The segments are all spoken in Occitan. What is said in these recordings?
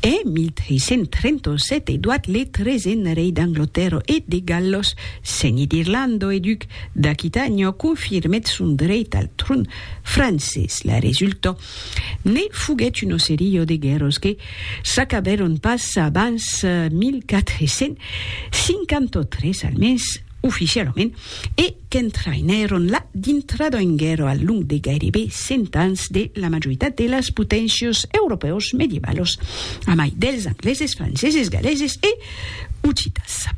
E 1337 Edoard le treisen rei d'Anglotèrro e de Gallos, seni d'Irlando e duc d'Aquitànio, confirmèt son dreit al tron francés. La resulta ne foguèt una seria de guèrras que s'acabèron pas abans 1453, almens. oficialament, e qu'entraïnèron la dintrada en guèrra al long de gairebe cent ans de la majoritat de las poténcias europèus medievalos, amai dels angleses, franceses, galeses e occitans.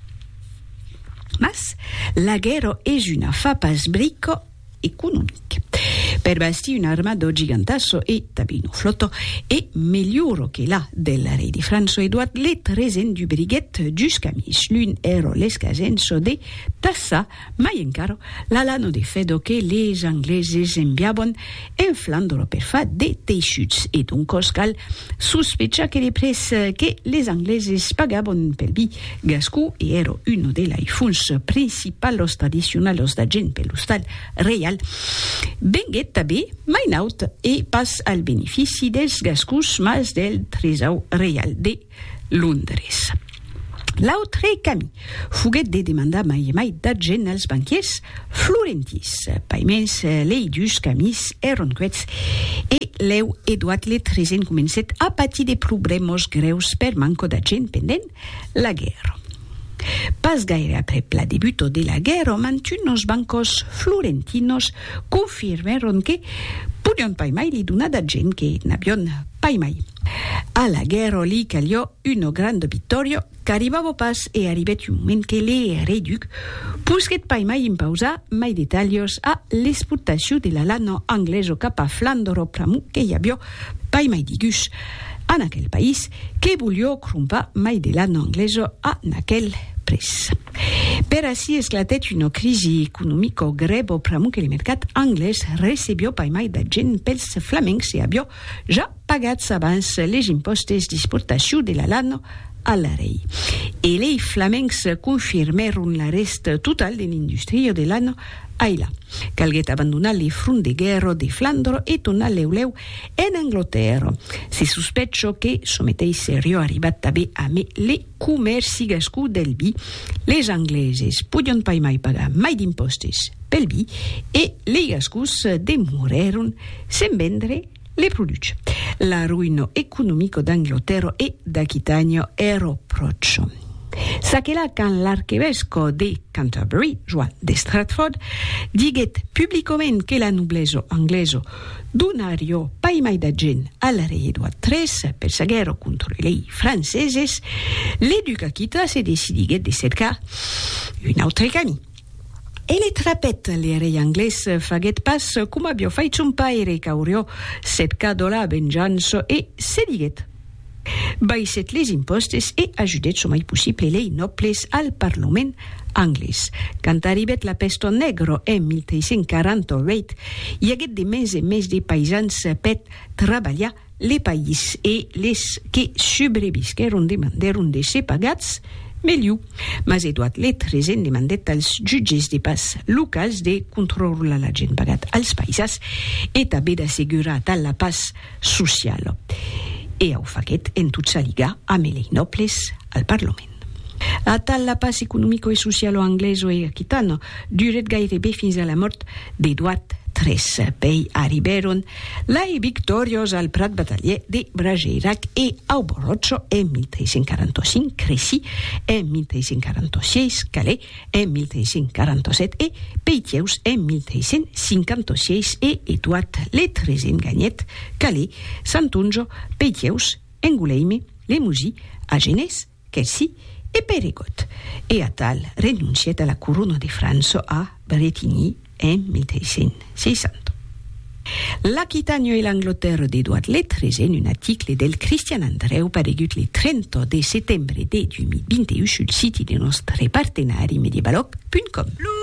Mas, la guèrra es una fa pas brica. economic. Per bastir un armado gigantasso e tablir un flotò e melhoro que la del rei de França Edouard le tresen dubriguèt dus camins, l'un ero l'escasenço de Tassa mai encaro la lano de Fedò que les angleses enviabon en Flandro per far de teissuts e doncòs cal sospechar que le prèç que les angleses pagabon pel bi Gascon e ero uno de lei fons principalos tradicionalos da gent per l'ostal reial, venguet tabe mai naut e pas al benefici dels gascons mas del tresaur reial de Londres. L'autre cami foguet de demandar mai e mai d'argent als banquiers Florentis, paiments leidus qu'amis èron queths, e lèu Edouard le Treisen comencèt a patir de problèmas grèus per manca d'agent pendent la guèrra. Pas gaire aprèp la debuta de la guèrra, mantunos bancos florentinos confirmèron que podián paimai li donar d'agent que n'avián paimai. A la guèrra li calió una granda victòria qu'arribava pas e arribèt un moment que l'ereduc posquèt pas mai impausar mai de talhas a l'exportacion de la lana anglesa cap a Flandra pr'amor que i avió pas mai de gus en aquel país que volió crompar mai de lana anglesa a n'aquel prèç. Per ací esclatèt una crisi economica grèva pr'amor que le mercat anglés recebió pas mai d'agent pels flamencs e avió ja pagatz abans les impòstes d'exportacion de la lana a l'Arei. E lei flamencs confirmèron l'arrèst total de l'industria de lana ailà. Calguèt abandonar le front de guèrra de Flandre e tornar lèu lèu en Anglatèrra. Se sospècha que çò meteis seriá arribat tanben a mai le comèrci gascon del vi. Les Angleses podián pas mai pagar mai d'impòstes pel vi e lei Gascons demorèron sen vendre Le produce. L'arruino economico d'Anglotero e d'Aquitagno ero pròcho. S'aquela quand l'arquevesco de Canterbury, Joan de Stratford, diguet publicoment que la nobleso angleso donarió pas mai d'agent al rei Edward tres per sa guèrra contre lei franceses, le duc Aquita se decidiguet de cercar un autre camí. E le trapèt, le rei anglés faguèt pas coma avió fait son paire qu'aurió setcat do la venjança e se diguèt. Baissèt les impòstes e ajudèt çò mai possible lei nòbles al parlament anglés. Quand arribèt la pèsto negra en 1348, i aguèt de mens en mens de paisans pèt trabalhar Le país e les que subrevisquèron demandèron de ser pagats melhor, mas Edward le Treisen demandèt als jutges de pas locals de controrlar l'agent pagat als paisas e tanben d'assegurar tal la pas sociala. E au faguèt en tot s'aligar amb lei nòbles al parlament. Atal la pas economico e socialo angleso e aquitano durèt gairebe fins a la mòrt d'Edoard tres. Pei arribèron lai victoriós al prat batalhièr de Brageirac e au Borròcho en 1345, Crecy en 1346, Calais en 1347 e Peitièus en 1356 e Edoard le tresen ganhèt Calais, Santonjo, Peitièus, Angoulême, Lemoji, Agenés, Quercy e Périgord, e atal renoncièt a la corona de França a Bretigny en 1360. L'Aquitània e l'Anglatèrra d'Edouard le Tresèn un aticle del Cristian Andrèu paregut le 30 de setembre de 2021 sul siti de nòstre partenari medievalòg punt com.